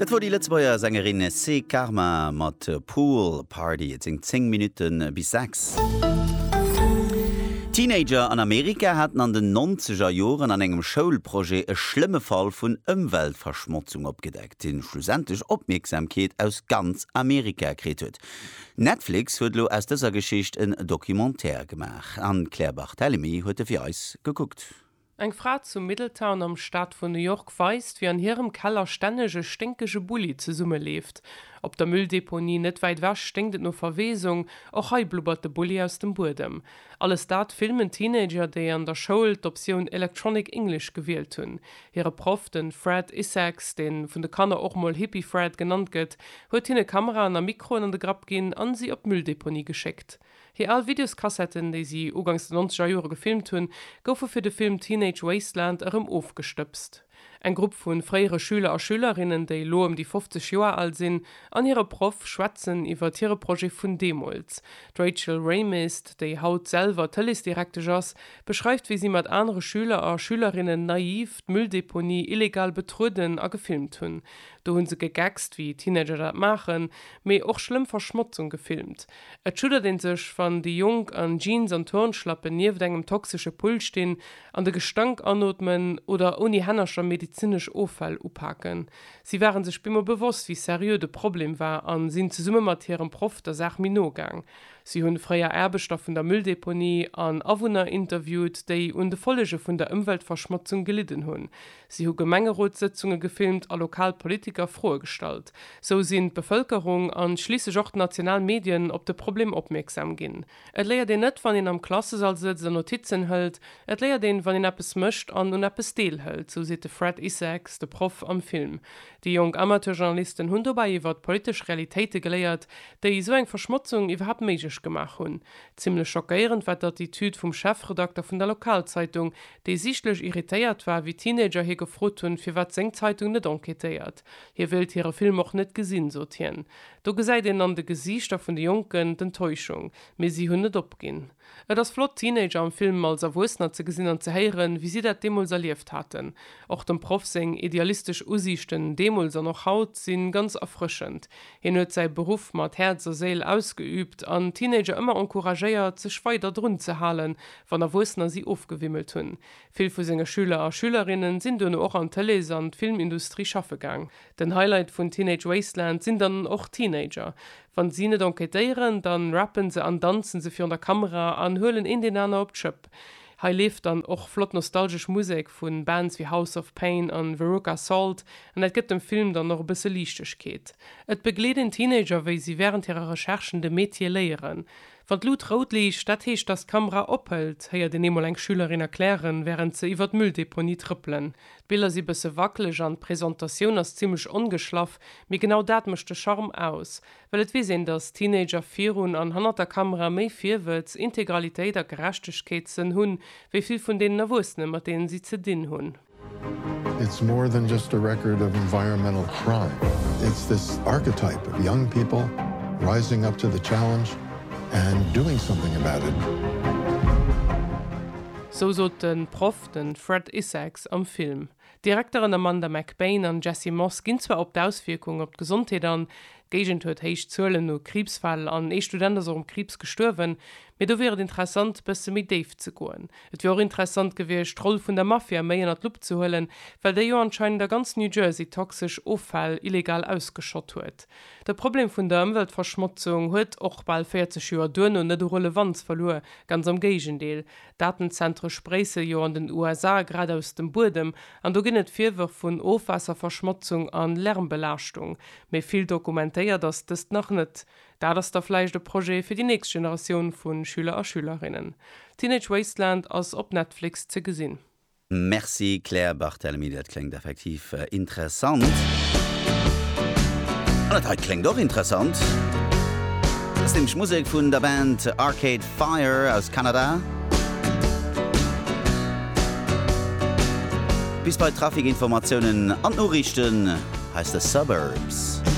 Dat wor déi Lëtzebuerger Sängerin Cé Karma mat Pool Party. Et sinn 10 Minutte bis 6. Teenager an Amerika haten an den nonzeger Joren an engem Schoulprojet e schlëmme Fall vun Ëmweltverschmotzung opgedeckt, dee schlussendlech Opmierksamkeet aus ganz Amerika kritt huet. Netflix huet elo aus dëser Geschicht en Documentaire gemaach an d'Claire Barthelemy huet e fir eis gekuckt. Eng Fra zu Middletown am Staat vun New York weist, wéi an hirem Keller stänneg e sténkege Bulli zesummeleeft. Op der Mülldeponie net wäit ewech sténkt et no Verweesung. Och hei blubbert de Bulli aus dem Buedem. Alles dat filmen Teenager, déi an der Schoul d'Optioun Electronic English gewielt hunn. Hire Proff, de Fred Issacs, dee vun de Kanner och mol Hippie Fred genannt gëtt, huet hinne Kameraen a Mikroen an de Grapp ginn a si op d'Mülldeponie geschéckt. Hir al Videoskassetten, déi si ugangs de nonzeger Jore gefilmt hunn, goufe fir de Film Teenage Wasteland erëm ofgestëbst. Eng Grupp vu fréiere Schüler a Schülerinnen, déi elo ëm déi 50 Joer al sinn, an hire Proff schwätzen iwwert hire Projet vun deemools. D'Rachel Raymist, déi haut selwer Tëleesdirektesch ass, beschreift, wéi si mat anere Schüler a Schülerinnen naiv d'Mülldeponie illegal betrueden a gefilmt hunn. Do hu se gegeckst, wéi Teenager dat maachen, mee och schlëmm Verschmotzung gefilmt. Et schuddert een sech, wann déi Jonk an Jeans an Turnschlappen nieft engem toxesche Pull stinn an de Gestank anootmen oder ouni Hännercher medezinesch Offäll upaken. Si ware sech bemol bewosst, wéi seriö de Problem war a sinn zesumme mat hirem Proff der Saach méi no gaang. Si hunn fréier Aarbechter vun der Mülldeponie an Awunner interviewt, déi un de Follege vun der Ëmweltverschmotzung gelidden hunn. Si hu Gemengerotssëtzunge gefilmt a lokal Politiker Froe gestallt. Sou sinn d'Bevëlkerung an schliisslech och d'national Medien op de Problem opmierksam ginn. Et léiert een net, wann een am Klassesall sëtzt a Notizen hëlt, et léiert een, wann een eppes mécht an un eppes deelhëlt, sou seet de Fred Isaacs, de Proff am Film. Déi jonk Amateurjournalisten hunn dobäi iwwert politesch Realitéite geléiert, déi esou eng Verschmotzung iwwerhaapt méiglech gemaach hunn. Zimmlech schockéierend war d'Attitüd vum Chefredakter vun der Lokalzeitung, dee sichtlech irritéiert war, wéi Teenager hie gefrot hunn, firwat seng Zeitung net enquêtéiert. Hie wéilt hire Film och net gesinn, sot hien. Do gesäit een an de Gesiichter vun de Jonken d'Enttäuschung, mee si hunn net opginn. Et ass flott, d'Teenager am Film als Erwuessener ze gesinn an ze héieren, wéi si dat deemools erlieft haten. Och dem Proff seng idealistesch Usiichten deemools an och haut si ganz erfrëschend. Hien huet säi Beruff mat Häerz a Séil ausgeüübt an d'Teenager ëmmer encouragéiert, sech weider drun ze halen, wann Erwuessener si ofgewimmelt hunn. Vill vu senge Schüler a Schülerinnen sinn duerno och an d'Tëlees an d'Filmindustrie schaffe gaang. Den Highlight vun Teenage Wasteland sinn dann och d'Teenager. Wann si net enquêtéieren, dann rappen se an danzen se virun der Kamera an huelen een deen aner op d'Schëpp. Hei leeft dann och flott nostalgesch Musek vun Bands wéi House of Pain an Veruca Salt an dat gëtt dem Film dann och e bësse Liichtegkeet. Et begleet een Teenager wéi si während hirer Recherchen de Metier léieren. Wann d'Lut rout liicht, dat heescht, dass d'Kamera ophëlt, héiert een eemol eng Schülerin erklären, wärend se iwwer d'Mülldeponie trëppelen. D'Biller si bësse wackeleg an d'Presentatioun ass zimmlech ongeschlaff, mee genau dat mécht de Charme aus. Well et weess een, dass Teenager virun an hannert der Kamera méi Virwëtz, Integralitéit a Gerechtegkeetssënn hunn, wéi vill vun deenen Erwuessene, mat deenen si ze dinn hunn. It's more than just a record of environmental crime, it's this archetype of young people rising up to the challenge and doing something about it. Sou sot de Proff, de Fred Isaacs, am Film. D'Direkteren Amanda McBaine an Jesse Moss ginn zwar op d'Auswierkung op d'Gesondheet an, d'Géigend huet héich Zuelen u Kriibsfäll an ee Student ass och um Kriibs gestuerwen, mee do wier et interessant, bësse méi déif ze goen. Et wier och interessant gewiescht, d'Roll vun der Mafia méi ënner d'Lupp ze huelen, well déi jo anscheinend a ganz New Jersey toxesch Offäll illegal ausgeschott huet. De Problem vun der Ëmweltverschmotzung huet och bal 40 Joer duerno net u Relevanz verluer, ganz am Géigendeel. D'Datenzentre spréisse jo an den USA grad aus dem Buedem, an do ginn et Virwërf vun Ofwaasserverschmotzung a Lärmbelaaschtung. Mee vill dokumentéiert ass dëst nach net. Dat ass da vläicht e Projet fir déi nächst Generatioun vu Schüler a Schülerinnen. Teenage Wasteland ass op Netflix ze gesinn. Merci Claire Barthelemy, dat kléngt effektiv interessant. An dat hei kléngt och interessant. Dat ass nämlech Musek vun der Band Arcade Fire aus Kanada. Bis bei d'Trafikinformatiounen an d'Noriichten, hei ass de Suburbs.